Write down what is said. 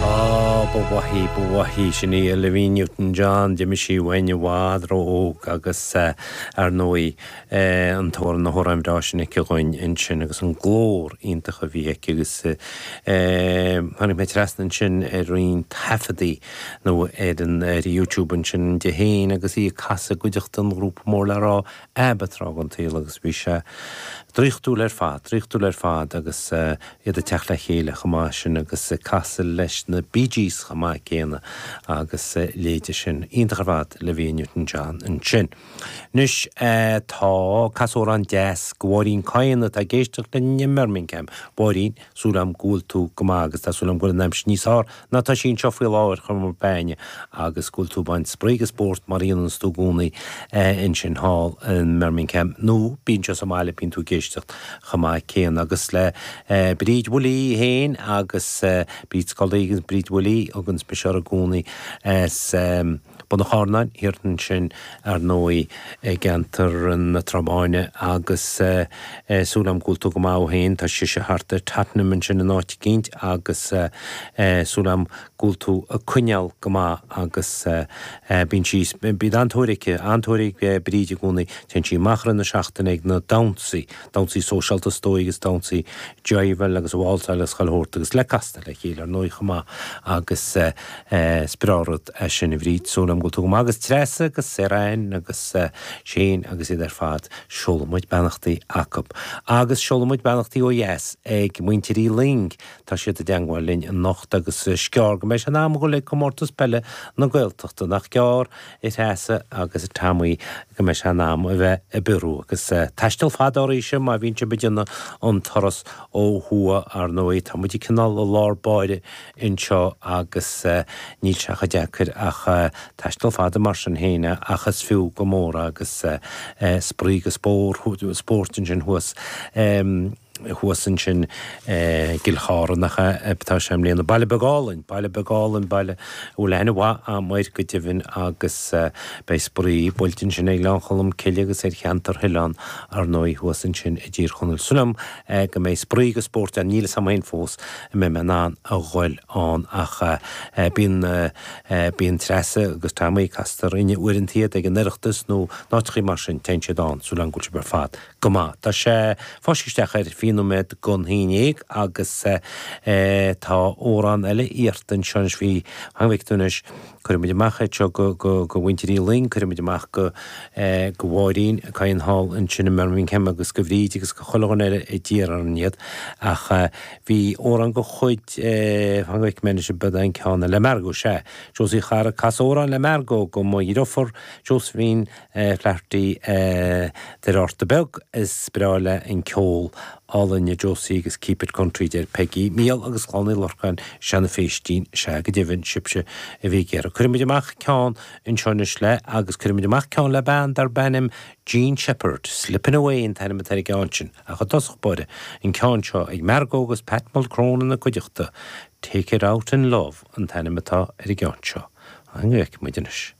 Ah, ba mhaith í, ba mhaith í. Sin í Olivia Newton John. D'imigh sí uainn i bhfad ró-óg agus ar ndóigh an t-amhrán, na hamhráin bhreá sin aici againn ansin agus an glór iontach a bhí aici agus tháinig mé trasna ansin ar roinnt taifeadaí nó ar an, ar YouTube ansin di fhéin agus í ag casadh i gcuideachta an ghrúpa mór le rá, ABBA tráth den tsaol agus bhí sé draíochtúil ar fad, draíochtúil ar fad agus iad ag teacht le chéile chomh maith sin agus ag casadh leis na Bee Gees chomh maith céanna agus a leithéide sin. Iontach ar fad Olivia Newton John ansin. Anois tá cas amhrán deas do Mháirín Kyne atá ag éisteacht linn i mBirmingham. Mháirín, súil agam go bhfuil tú go maith agus tá súil agam go bhfuil an aimsir níos fearr ná atá sí anseo faoi láthair. ar chuma ar bith agus go bhfuil tú ag baint spraoi agus spórt mar a dhéanann tú i gcónaí ansin thall i mBirmingham nó bíonn sé sa mbaile bíonn tú ag éisteacht chomh maith céanna agus le Bríd Willie féin agus Bríd Scully agus Bríd Willie a thuganns mise uirthi i gcónaí as Bun an Charnáin thiar ansin, ar ndóigh, i gceantar na Trá Báine agus súil agam go bhfuil tú go maith thú féin, tá sise thart ar Tottenham ansin in áit eicínt agus súil agam go bhfuil tú ag coinneáil go maith agus bíonn sí, bíonn an-tóir aici, an-tóir ag Bríd i gcónaí, téann sí amach i rith na seachtaine ag na damhsaí, damhsaí sóisialta is dóigh agus damhsaí jiveáil agus válsáil agus chuile shórt agus le casadh le chéile ar ndóigh chomh maith agus is breá rud é sin a Bhríd, súil agam go bhfuil tú go maith agus Treasa agus Sarah Anne agus Shane agus iad ar fad, seolfaidh muid beannachtaí acu. Agus seolfaidh muid beannachtaí ó dheas ag Muintir Uí Luing, tá siad i dteangmháil linn anocht agus is gearr go mbeidh sé in am a dhul ag Comórtas Peile na Gaeltachta, nach gearr? a Threasa agus a Tommy go mbeidh sé in am a bheith ag biorú agus taisteal fada arís má bhíonn sibh ag déanamh an turas ó thuaidh. Ar ndóigh, tá muide cineál i lár báire anseo agus níl sé chomh deacair ach taisteal fada mar sin féin ach is fiú go mór agus spraoi agus spórt ansin thuas. thuas ansin i gCill Chartha, nach ea, atá sé i mbliana. Baile beag álainn, baile beag álainn, baile a bhfuil aithne mhaith agam air go deimhin agus beidh spraoi, buailte ansin ar Ghleann Cholm Cille agus ar cheantar Theilinn ar ndóigh thuas ansin i dTír Chonaill. Súil agam go mbeidh spraoi agus spórt ann, níl fhios agam féin fós an mbeidh mé in ann a ghoil ann ach bíonn, bíonn Treasa agus Tommy, castar orainn uaireanta iad ag an Oireachtas nó áiteachaí mar sin, téann siad ann, súil agam go bhfuil sibh ar fad. Go maith. Tá sé fáiscthe isteach ar fiche nóiméad don a naoi agus tá amhrán eile iarrta anseo anois le Seán Mac Donncha. Cuirfidh muid amach iad seo go Muintir Uí Fhloinn, cuirfidh muid amach go Máirín Ní Chatháin thall ansin i mBirmingham agus go Bríd agus go chuile dhuine eile a d'iarr orainn iad. Ach bhí amhrán de chuid Sheáin Mhic Duinesh i bPodane Ceann le Margo, sea. Josie Charra, cas amhrán le Margo gan moill for Josephine. Flaherty, Doire Fhatharta Beag, Is breá lei an ceol álainn le Josie agus Keep it Country deir Peggy, Michael agus Clann Uí Lorcáin Seán Féistín, Sea go deimhin, sibhse a bhí ag iarraidh. Cuirfidh muid amach ceann anseo anois le agus cuirfidh muid amach ceann le bean darb ainm Jean Shepherd. Slippin' Away an t-ainm atá ar an gceann sin. Ach i dtosach báire, an ceann seo ag Margo agus Pat Mulcrone ina cuideachta. Take it out in love an t-ainm atá ar an gceann seo. againn anois.